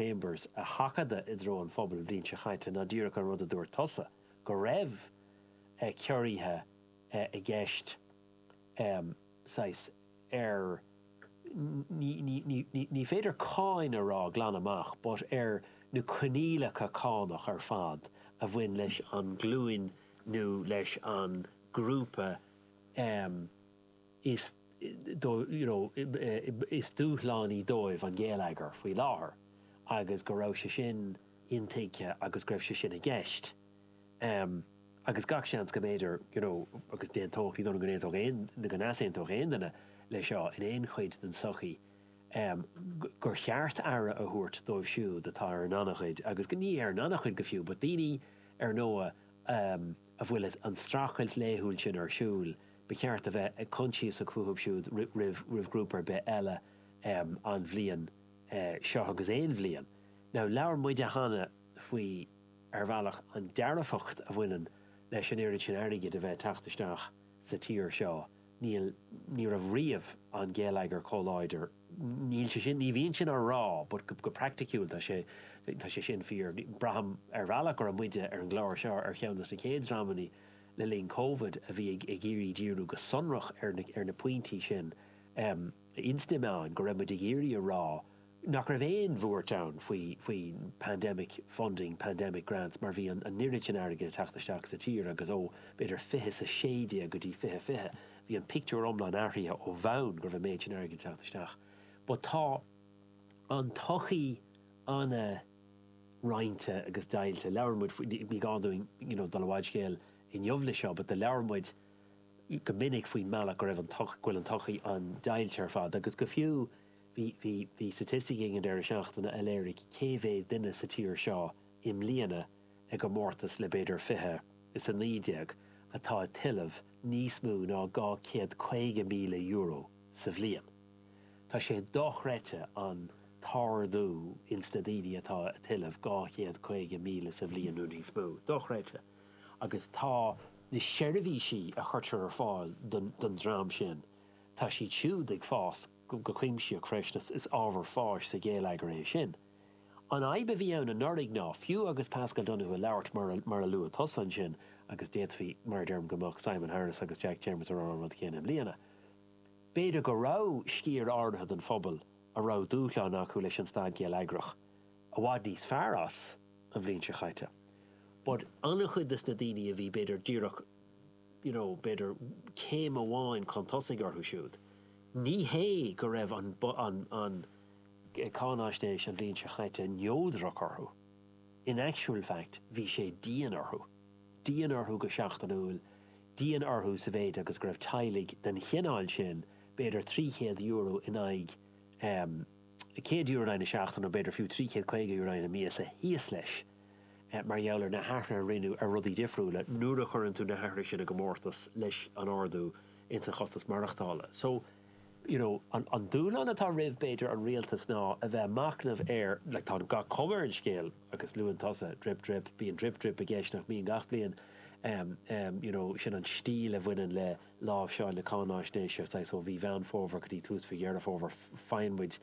Chambers a sheachadadh i dtreo an phobail an bhliain seo chaite ná díreach an rud a dúirt tusa, go raibh ciorruithe i gceist, saghas, ar, ní féidir cáin a rá, glan amach, but ar na coinníollacha cánach ar fad a bhain leis an nglúin nó leis an ngrúpa, is dúshlánaí dóibh an geilleagar faoi láthair agus go raibh sé sin intuigthe agus go raibh sé sin i gceist agus gach seans go mb'fhéidir you know agus d'aontódh, ní dóigh liom go n-aontódh aon, go n-easaontódh aon duine leis seo in aon chuid den sochaí, gur cheart aire a thabhairt dóibh siúd atá ar an ngannchuid agus, ní ar an ngannchuid go fiú, but daoine ar ndóigh a bhfuil an streachailt laethúil sin ar siúl, Ba cheart a bheith coinsiasach fúthu siúd roimh ghrúpa ar bith eile an bhliain seo agus aon bhliain. Now labhair muide cheana faoi, ar bhealach, an dearfacht a bhaineann leis an oiread sin airgid a bheith ag teacht isteach sa tír seo. Níl, ní raibh riamh an geilleagar chomh láidir, níl sé sin, ní bhíonn sin á rá but go praiticiúil tá sé, tá sé sin fíor. Braithim, ar bhealach, go raibh muide ar an gclár seo ar cheann de na chéad dreamannaí, le linn Covid a bhí ag iarraidh díriú go sonrach ar na pointí sin ins na meáin, go raibh muid ag iarraidh a rá nach raibh aon bhuairt ann faoi, faoi pandemic funding, pandemic grants mar bhí an oiread sin airgid ag teacht isteach sa tír agus ó, b'fhéidir, fiche is a sé déag go dtí fiche fiche, bhí an pictiúr iomlán athraithe ó bhonn go raibh an méid sin airgid ag teacht isteach. But tá an tsochaí an-. roinnte agus deighilte. Labhair muid faoi, ní gá dúinn you know dul i bhfad scéil inniu leis seo but do labhair muid go minic faoin mbealach go raibh an tsochaí, go bhfuil an tsochaí an-deighilte ar fad agus go fiú bhí, bhí, bhí staitisticí ag an deireadh seachtaine a léirigh cé mhéad duine sa tír seo i mbliana i gcomórtas le b'fhéidir fiche is a naoi déag atá ag tuilleamh níos mó ná dhá chéad caoga míle euro sa bhliain. Tá sé dochreidte an t-ardú ins na daoine atá ag tuilleamh, dhá chéad caoga míle sa bhliain nó níos mó. Dochreidte. Agus tá na seirbhísí a chuirtear ar fáil don dream sin, tá siad siúd ag fás go cuimseach freisin. Is ábhar fáis sa gheilleagar é sin. An fhadhb a bhí ann anuraidh ná, fiú agus Paschal Donohoe ag labhairt mar a luaigh tusa ansin, agus d'fhéadfaí, mar a deirim, go mbeadh Simon Harris agus Jack Chambers ag rá an rud céanna i mbliana, B'fhéidir go raibh sciar áirithe den phobal a raibh dúshlán acu leis an staid gheilleagrach i bhfad níos fearr as an bhliain seo chaite, but an-chuid de sna daoine a bhí b'fhéidir díreach, you know, b'fhéidir céim amháin chun tosaigh orthu siúd, ní hé go raibh an cháinaisnéis an bhliain seo chaite neodrach orthu. In actual fact, bhí sé dian orthu. Dian orthu go seachtainiúil. dian orthu sa mhéid agus go raibh teaghlaigh den chineál sin, b'fhéidir €300 in aghaidh €100 in aghaidh na seachtaine nó b'fhéidir fiú €350 in aghaidh na míosa, thíos leis mar gheall ar na hathruithe a rinneadh ar rudaí difriúla nuair a chuireann tú na hathruithe sin i gcomórtas leis an ardú ins an chostas maireachtála. So. you know An dúshlán atá roimh, b'fhéidir, an rialtas ná a bheith ag machnamh ar like tá gach cuma ar an scéal agus luann tusa drip, drip, bíonn drip, drip i gceist nach mbíonn gach bliain em, em you know sin an stíl a bhaineann le láimhseáil na cáináisnéise saghas ó mhí Mheán Fómhair go dtí tús mhí Dheireadh Fómhair faigheann muid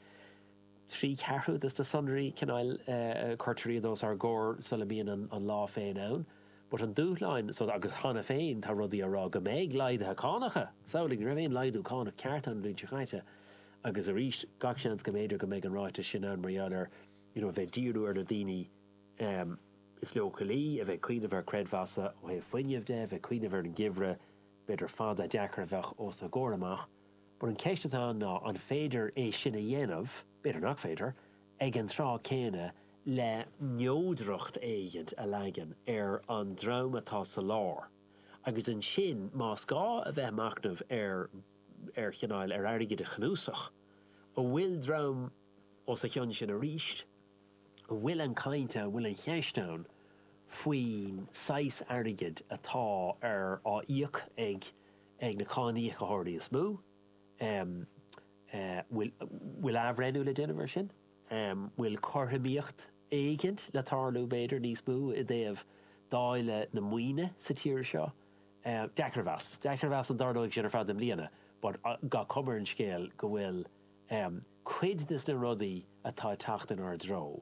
trí cheathrú de na sonraí cineáil cuirtear iad os ár gcomhair sula mbíonn an lá féin ann. But an dúshláin so, agus cheana féin tá rudaí á rá go mbeidh laghduithe cánacha! Samhlaigh, ní raibh aon laghdú cánach ceart ann an bhliain seo chaite agus arís gach seans go mb'fhéidir go mbeidh an ráiteas sin ann mar gheall ar you know bheith díriú ar na daoine is leochailí, a bheith ag cuimhneamh ar chreidmheasa ó thaobh fuinnimh de, bheith cuimhneamh ar an ngeimhreadh b'fhéidir fada deacair a bheadh os a gcomhair amach. Mar an cheist atá ann ná, an féidir é sin a dhéanamh, b'fhéidir nach féidir, ag an tráth céanna le neodracht éigin a leagan ar an dream atá sa lár, agus ansin, más gá a bheith machnamh ar, ar chineáil, ar airgead a chnuasach, an bhfuil dream os a chionn sin arís, an bhfuil an chaint ann, an bhfuil an cheist ann faoin saghas airgid atá ar á íoc ag, ag na cáiníocóirí is mó. Bhfuil athbhreithniú le déanamh air sin? Bhfuil cothromaíocht éigin le tarlú, b'fhéidir, níos mó i dtaobh dáileadh na maoine sa tír seo? Deacair a mheas. Deacair a mheas an dtarlóidh sin ar feadh na bliana, but tá cuma ar an scéal go bhfuil cuid de na rudaí atá ag teacht inár dtreo,